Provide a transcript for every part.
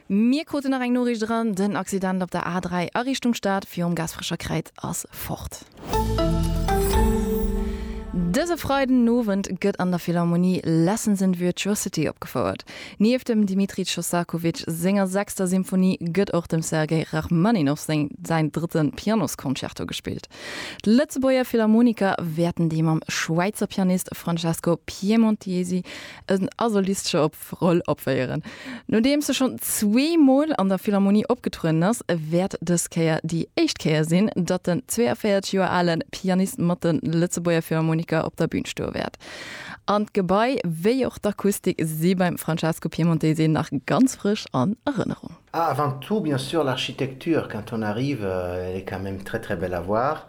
Mir kruten nach eng Noriicht eran, den Accident op der A3 a Richtung Stad virum Gaasperecher Kräiz ass fort. Dëse Freiden Owend gëtt an der Philharmonie Lessons in Virtuosity opgefouert. Nieft dem Dmitri Shostakovich senger sechster Symphonie gëtt och dem Sergei Rachmaninoff seng säin drëtte Pianosconcerto gespillt. D'Lëtzebuerger Philharmoniker wäerten déi mam Schwäizer Pianist Francesco Piemontesi en Asolistche op Roll opféieren. Nodeems se schonn zwee Mol an der Philharmonie opgetrueden ass, wäert dës Kéier déi éischt Kéier sinn, datt den 42 Joer ale Pianist mat de Lëtzebuerger Philharmoniker op der Bün stoe wäert. An d'Gebai wéi och d'Akustik si beim Francesco Piemontesi nach ganz frësch an Erënnerung. Ah, avant tout, bien sûr, l'architecture, quand on arrive, elle est quand même très très belle à voir.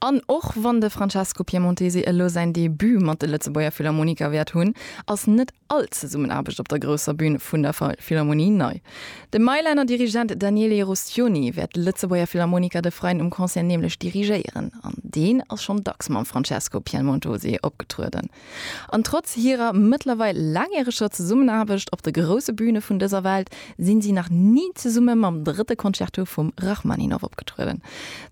An och wann de Francesco Piemontesi elo säin Debut mat de Lëtzebuerger Philharmoniker wäert hunn, ass net all Zesummenaarbecht op der grousser Bün vun der Philharmonie nei. De Mailaner Dirigent Daniele Rustioni wäert d'Lëtzebuerger Philharmoniker de Freien um Concert nämlech dirigéieren an deen ass schonn dacks mam Francesco Piemontosi opgetrueden. An trotz hirer mëttlerweil laangjäreger Zesummenaarbecht op de grousse Bühne vun dëser Welt, sinn si nach ni zesumme mam drëtte Concerto vum Rachmaninoff opgetrueden.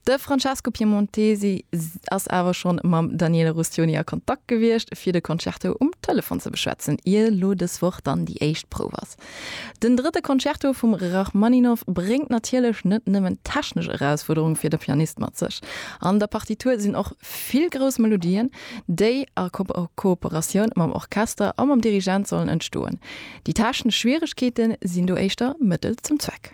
De Francesco Piemontesi ass awer schonn mam Daniele Rustioni a Kontakt gewiescht, fir de Concerto um Telefon ze beschwätzen, ier elo dës Woch dann déi éischt Prouf ass. Den drëtte Concerto vum Rachmaninow bréngt natierlech net nëmmen technesch Erausfuerderung fir de Pianist mat sech. An der Partitur sinn och vill grouss Melodien, déi a Kooperatioun mam Orchester a mam Dirigent sollen entstoen. Déi technesch Schwieregkeete sinn do éischter Mëttel zum Zweck.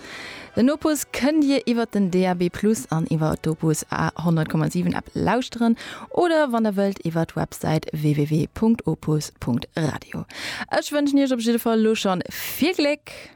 Den Opus kënnt Dir iwwer den DAB Plus an iwwer d'Opus A 100,7 App lauschteren oder wann Der wëllt iwwer d'Websäit www.opus.radio. Ech wënschen Iech op jidde Fall elo schonn vill Gléck!